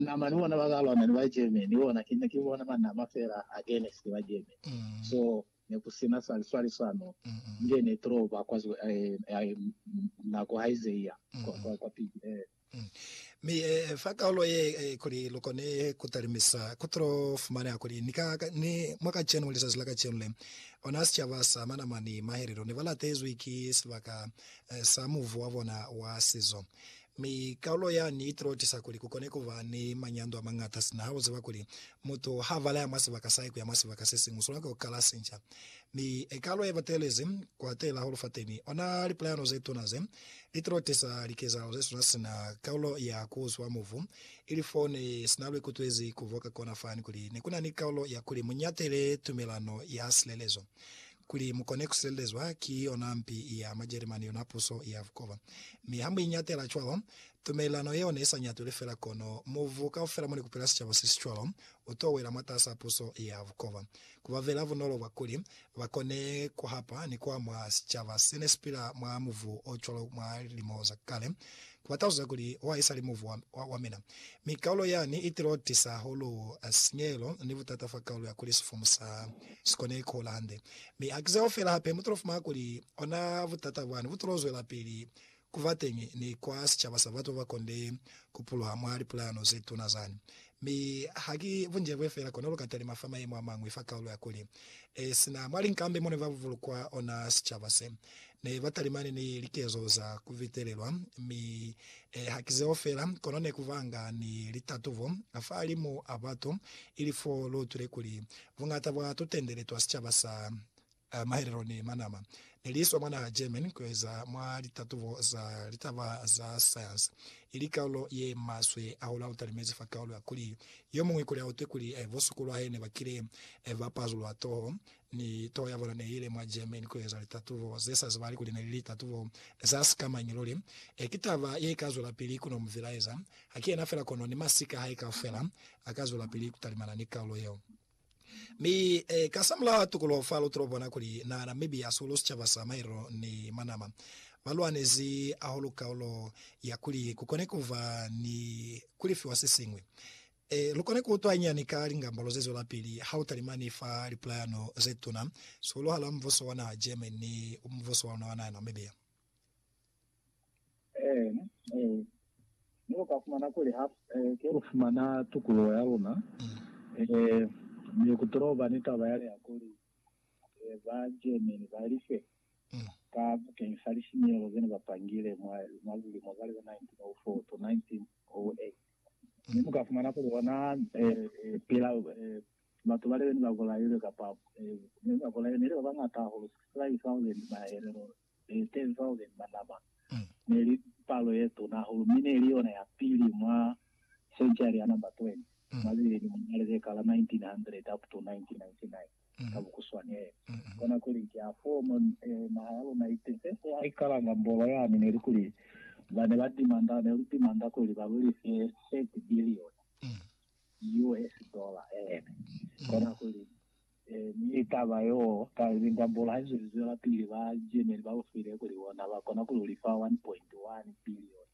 Nama ni bona baka lwana ni ba Germany ni bona ki ne ki bona manama fela against ba Germany so ne ku sina sa liswalisano nge ne draw ba kwa nako ha ize iya kwa kwa pili eh. Mi fa kaulo ye kuli lu kone ku talimisa ku tulo fumaneha kuli ni ka ni mwa kacenu lizazi la kacenu le ona sicaba sa manama ni mahelelo ne ba latezwi ki sibaka sa muvu wa bona wa sizo Mi kaulo yani itilotisa kuli kukone kuba ni manyando amañata sina hauziba kuli mutu habalaya mwa sibaka sahae kuya mwa sibaka sesiñwi, uswanela ku kala sinca. Mi ekaulo yebatelezi kwatela hulu fateni, ona lipulayano zetuna ze litilotisa likezahalo zesuna sina kaulo ya kuuzwa mubu, ili fone sina luikutwezi kuboka kona fani kuli nekunani kaulo yakuli muñatele tumelano ya silelezo. Kuli mu kone ku silelezwa ki yona mpi ya Majerimani, yona puso ya bukoba. Mi ha mu iñatela cwalo, tumelelano yeo ne i sa ñatulwi fela kono mubu kaufela mo ne ku pila sicaba se si cwalo u to wela mwatas'a puso ya bukoba. Ku ba bela bunolo bwa kuli ba kone ku hapa ni ku amwa sicaba se ne si pila mwa mubu o cwalo mwa lilimo za kale, Ba talusa kuli, Wa esali mubu wa, wa, wa mina. Mi kaulo yani i tilo tisa hahulu sinyehelo ni butata fa kaulo ya kuli sifumu sa si kone ku hola hande. Mi ha ki zeo fela, hape mu tilo fumana kuli ona butata bwani bu tilo zwelapili ku ba teñi ni kwa sicaba sa batu ba ba konde ku puluha mwa lipulayano ze tuna zani. Mi ha ki bunjebwe fela kono lu ka talima fa mayemo a mañwi fa kaulo ya kuli, e, sina mwa linkambi mo ne ba bulukwa ona sicaba se, Ne ba talimani ni likezo za ku bitelelwa, mi e, ha ki zeo fela, kono ne ku banga ni litatubo fahalimu a batu, ili fo lu utwile kuli buñata bwa tutendele twa sicaba sa mahelelo ne ma nama, ne li iswa mwa naha Germany ku yo eza mwa litatubo za litaba za sayansi, ili kaulo ye maswe hahulu ha lu talimezi fa kaulo ya kuli yo muñwi kuli a utwe kuli bo suku lwa hae ne ba kile ba pazulwa toho Mi toho ya bona ne ile mwa Germany ku eza litatubo ze sa zibahali kuli ne li litatubo za sika mañi luli. E, ki taba ye ika zwelapili ku no mu vilaeza. Haki yena fela kono ni masika a hae kaufela a ka zwelapili ku talimana ni kaulo yeo. Mi, e, ka sa mulaho a tukuluho fa, lu tulo bona kuli naha Namibia hasuhulu sicaba sa Mairo ni Manama ba lwanezi hahulu kaulo ya kuli ku kone ku ba ni ku lifiwa se siñwi. Ee, lu kona ku utwa hañani ka lingambolo ze zwelapili ha u talimani fa lipulayano ze tuna sihuluhali ha mubuso wa naha Germany ni mubuso wa luna wa naha Namibia. Ee, ee. Mi lu ka fumana kuli ha ke lu fumana tukuluho ya luna, ee, mi ku tolo ba ni taba ya liha kuli ba Germany ba life ka bakeñisa lisinyehelo ze ne ba pangile mwa lilimo za liho 1904 to 1908. Mi mu ka fumana kuli ona pila batu bale bene ba bolailwe, kapa bene ba bolailwe neli ba bañata hahulu, 65,000 mahelelo, 10,000 ba nama. Neli palo ye tuna hahulu, mi neli yona ya pili mwa senchari ya namba 20, mwa zilelimo mwa lileka la 1900 up to 1999. ka bukuswanele. Kona kuli ki afoo mo naha ya luna itize fo ha ikalanga mbolo yani, neli kuli bane ba dimanda ne lu dimanda kuli ba lu life 30 bilioni US dollar ene. Kona kuli mi taba yoo ka linga mbolo ha izo lizwelapili ba Germany ba lu file kuli bona ba kona kuli u lifa 1.1 bilioni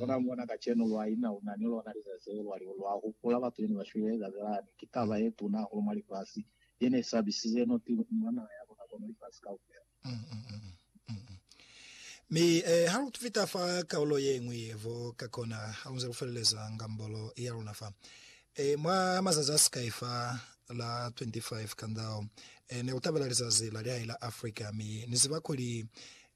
Ona mona kacenu lwa ina una ni lona lizazi leo lwa liho lwa hupula batu yene ba shwile lizazi lani. Ki taba ye tuna hahulu mwa lifasi, ye ne sabisize no ki mwa naha ya luna kono lifasi kaufela. Mi eh, ha lu fita fa kaulo ye ñwi ye vo ka kona, ha lu nze lu feleleza ngambolo ya luna fa eh, mwa mazazi a sikai fa la 25 ka ndao eh, ne ku tabela lizazi la lihai la Africa. Mi ni ziba kuli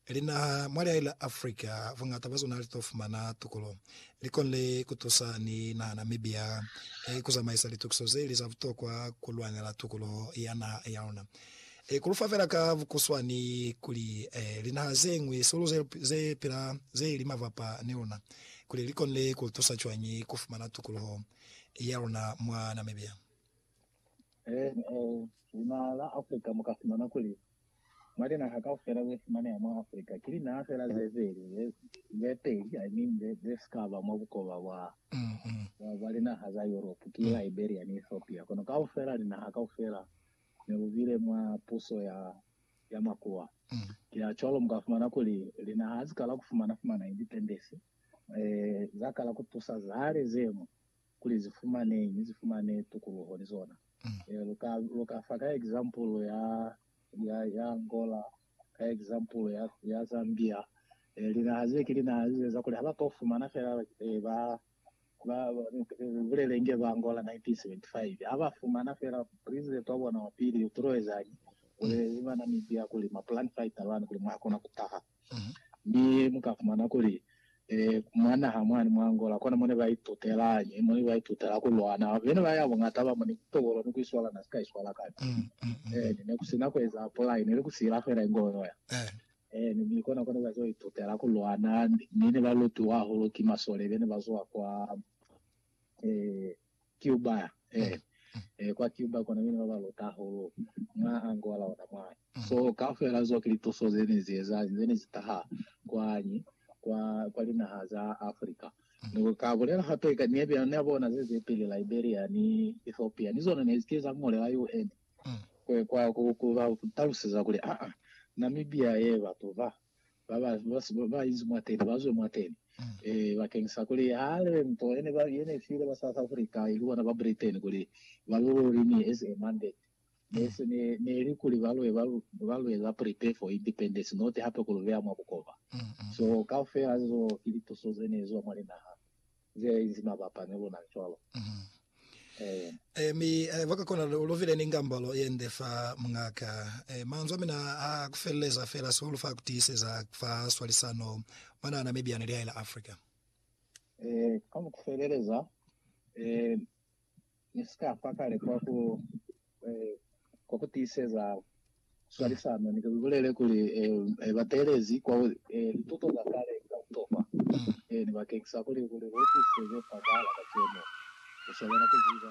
Linaha mwa lihae la Africa buñata bwa zona li to fumana tukolo. Li konile ku tusa ni naha Namibia ku zamaisa litukiso ze li za butokwa ku lwanela tukoloho ya naha ya luna. Ku lu fa fela ka bukuswani kuli, linaha ze ñwi sihulu ze pila ze li mabapa ni luna, kuli li konile ku lu tusa cwañi ku fumana tukoloho ya luna mwa Namibia. NA, Linaha la Afrika mu ka fumana kuli, mwa linaha kaufela ze fumaneha mwa Afrika, ki linaha fela ze peli, ze, ze peli, I mean, ze, ze si ka ba mwa bukoba bwa, bwa, bwa linaha za Yuropu, ki Liberia ni Ethiopia. Kono kaufela, linaha kaufela, ne lu bile mwa puso ya, ya makuwa. Ki ha cwalo mu ka fumana kuli, linaha ha zikala ku fumana-fumana independence, e, za kala ku tusa zale zemu, kuli zi fumane ni zi fumane tukuluho ni zona. E, lu ka, lu ka fa ka example ya, ya, ya Angola, ka example ya, ya Zambia. E, linaha ze ki linaha ze za kuli ha ba ka fumana fela, e, ba, ba, ba bulele nge ba Angola 1975. Ha ba fumana fela president wa bona wa pili, u tulo ezañi? Bulele ba Namibia kuli ma plan fighter bani kuli mwa kona ku taha. mi mu ka fumana kuli, ee, mwa naha mwani mwa Angola kona mo ne ba itutelañi, mo ne ba itutela ku lwana. Bena ba ya buñata ba mo ni tokolo ni ku iswala na si ka iswala kale. Eeni, ne ku si na ku eza pulai, ne li ku sila fela ingo yoya. Eeni, mi kona ko ne ba zwa itutela ku lwana, mi ne ba lutiwa hahulu ki masole be ne ba zwa kwa, ee, Cuba eh eh kwa Cuba kona mina baba luta hahulu mwa Angola ona mwa so kaufela zo ki lituso ze ne zi eza ze ne zi taha kwani kwa kwa linaha za Africa ni ka bulela hape ka ne be ne bona ze ze pili Liberia ni Ethiopia ni zona ne zi ke za ngolela UN kwe kwa ku ku ba taluseza kuli a a Namibia ye batu ba ba ba ba inzi mwateni ba zwe mwateni eh bakeng sa kuli ha lebe nto yene ba yene file ba South Africa ili bona ba Britain kuli ba lo lori ni as a mandate ne se ne ne li kuli ba lwe ba ba lwe la prepare for independence not hape ku lo beya mwa bukoba so kaufela zo ki lituso zene zo mwa linaha ze inzi mabapa ni luna cwalo. Ee. Ee, mi ba ka kona lu bile ni ngambalo ye nde fa mungaka. Ee, manzwi a mina a ku feleleza fela sihulu fa ku tiiseza fa swalisano mwa naha Namibia ni lihae la Africa. Ee, ka ku feleleza, ee, ne si ka fa kale kwa ku, eh, kwa ku tiiseza swalisano. Ni ke ku bulele kuli, eh, ba teelezi kwa, eh, lituto za kale za butokwa, eh, ni bakengisa kuli, kuli lu tiiseze fa kwahala kacenu, ku sobela ku ziba